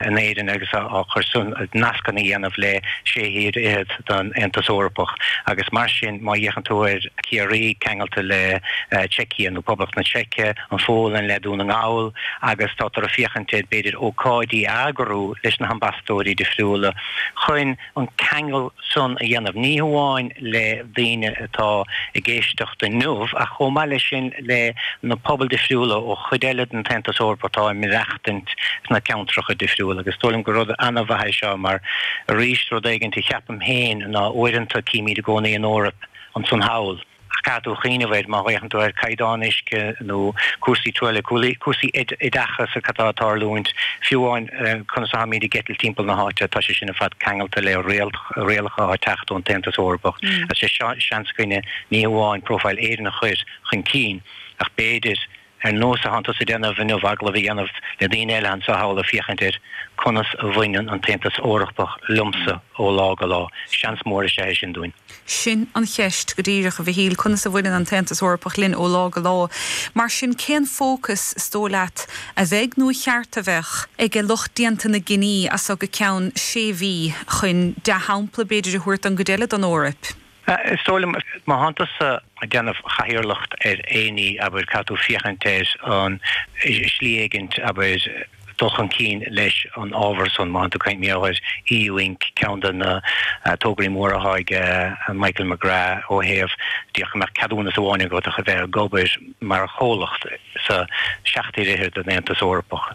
in Éirinn agus cur sna nascanna a dhéanamh le sé thír fhichead den Aontas Eorpach agus mar sin má fhéachann tú ar Ciarraí ceangailte le tSeicia nó Poblacht na Seice, an Pholainn le Dún na nGall agus tátar ag féachaint ar b'fhéidir ócáidí a eagrú leis na hambasadóirí difriúla chun. an ceangal san a dhéanamh, ní hamháin le daoine atá i gceist inniu ach chomh maith leis sin le na pobail difriúla ó chuid eile den tAontas Eorpach atá ag maireachtaint sna ceantracha difriúla agus is dóigh liom gur rud an-mhaith í seo mar arís rud éigin a cheapaim féin ná uaireanta címid i gcónaí an Eoraip ansan thall Caithfidh tú cuimhneamh air má fhéachann tú ar chaighdeán uisce nó cúrsaí truailliú, cúrsaí oideachas atá ag tarlúint, fiú amháin conas a tháimíd ag eitilt timpeall na háite, tá sé sin ar fad ceangailte le rialacha atá ag teacht ón tAontas Eorpach. Is é seo seans againne ní hamháin profile Éireann a chur chun cinn ach b'fhéidir, ar nós a thánn tusa ag déanamh inniu, agallamh a dhéanamh le daoine eile ansan thall ag féachaint ar conas a bhaineann an tAontas Eorpach liomsa ó lá go lá. Seans mór is ea é sin dúinn. Sin an cheist go díreach, a Mhichíl, conas a bhaineann an tAontas Eorpach linn ó lá go lá. Mar sin, cén fócas, is dóigh leat, a bheidh, nó ba cheart a bheith, ag lucht déanta na gcinní as seo go ceann sé mhí, chun dea-shampla, b'fhéidir, a thabhairt don gcuid eile den Eoraip? Is dóigh liom, má thánn tusa ag déanamh chathaoirleacht ar aon ní, abair, caithfidh tú féachaint ar an, slí éigin, abair, dul chun cinn leis an ábhar san. Má thánn tú ag caint, mar shampla, ar EU Inc, ceann de na tograí móra atá ag Michael McGrath ó thaobh, féach go mbeadh ceadúnas amháin agat ach a bheith ag obair mar chomhlacht sa seacht dtír fhichead den Aontas Eorpach.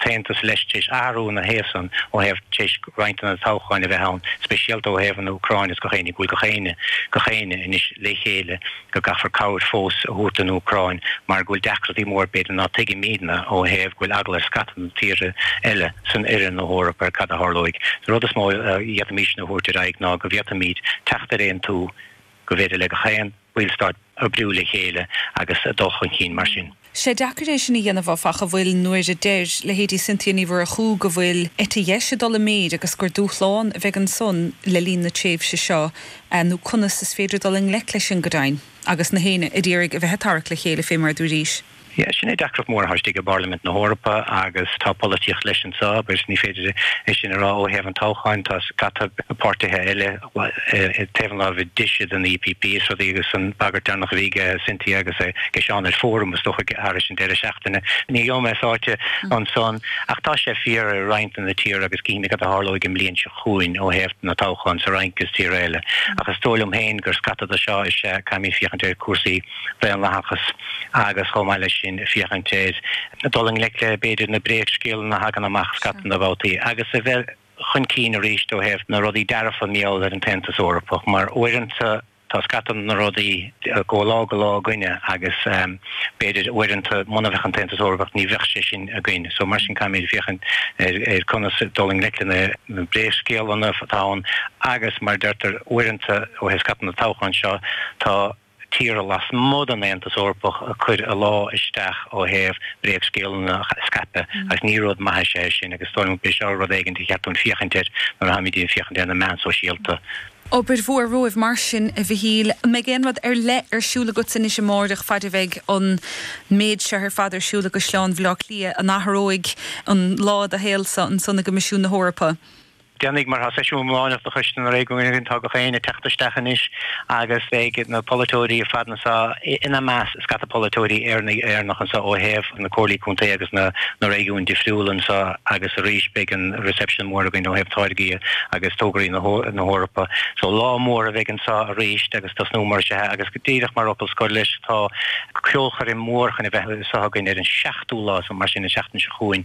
t-aontas leis tar éis athrú na haosan ó thaobh tar éis roinnt de na toghcháin a bheith ann, speisialta ó thaobh an Úcráin is gach éinne go bhfuil gach éinne, gach éinne anois le chéile go gcaithfear cabhair fós a thabhairt don Úcráin mar go bhfuil deacrachtaí mór b'fhéidir ná tuigimidne ó thaobh go bhfuil eagla ar scata de na tíortha eile san in oirthear na hEoraip ar cad a tharlóidh. An rud is mó a d'fhéadfaimis a thabhairt ar aghaidh ná go bhféadfaimid teacht ar aontú gur féidir le gach aon bhallstát oibriú le chéile agus dul chun cinn mar sin. Nach deacair é sin a dhéanamh, áfach, a bhfuil nuair a deir leithéidí Cynthia Ní Mhurchú go bhfuil eite dheis ag dul i méid agus gur dúshlán a bheidh ansan le linn na tréimhse seo nó conas is féidir dul i ngleic leis sin go deimhin agus gach éinne a d'iarraidh a bheith ag tarrac le chéile fé mar a dúraís. Sea, sin é deacracht mhór atá istigh i bPairlimint na hEorpa agus tá polaitíocht leis anseo agus ní féidir é sin a rá ó thaobh an toghcháin, tá scata páirtithe eile taobh an láimhe deise den EPP is rudaí agus an bagairt deireannach a bhí aige Cynthia agus aige Seán ar Fóram is dócha thar an deireadh seachtaine, ní gheobhaidh mé sáite ansan ach tá sé fíor i roinnt de na tíortha agus cífimid cad a tharlóidh an bhliain seo chugainn ó thaobh na toghchán sa Fhrainc is tíortha eile ach is dóigh liom féin gur scata de seo is ea caithfimid féachaint ar chúrsaí daonlathachas agus chomh maith leis sin féachaint ar dul i ngleic le b'fhéidir na bréagscéalanna a thagann amach scata babhtaí agus a bheith chun cinn arís ó thaobh na rudaí dearfa mar gheall ar an tAontas Eorpach mar uaireanta tá scata na rudaí againn ó lá go lá againne agus b'fhéidir uaireanta muna bheadh an tAontas Eorpach ní bheadh sé sin againn so mar sin caithfimid féachaint ar conas dul i ngleic le na bréagscéalanna atá ann agus mar a deirtear uaireanta ó thaobh scata na toghcháin seo tá tíortha lasmuigh den Aontas Eorpach ag cur a ladhar isteach ó thaobh bréagscéalanna a scaipeadh agus ní rud maith is ea sin agus is dóigh liom go b'é seo rud éigin gur cheart dúinn féachaint air nuair a táimid ag féachaint ar na meáin sóisialta. Obair mhór romhaibh mar sin, a Mhichíl. An mbeidh aon rud ar leith ar siúl agaibhse anois amáireach faid a bheidh an méid seo ar fad ar siúl i gCaisleán Bhaile Átha Cliath? An athróidh an lá i do shaol-sa ansan i gCoimisiún na hEorpa? Déanfaidh mar tá seisiún iomláineach de Choiste na Réigiún tá na daoine ag teacht isteach anois agus beidh na polaiteoirí ar fad anso, ina measc scata polaiteoirí Éireannacha anso ó thaobh na Comhairlí Contae agus na na réigiúin difriúla anso agus arís beidh an reception mór againn ó thaobh táirgí agus tograí na na hEorpa. So lá mór a bheidh anso arís agus tosnú mar seo agus díreach mar fhocal scoir leis tá ceolchoirm mhór chun a bheith anseo againn ar an 7ú lá so mar sin an seachtain seo chugainn,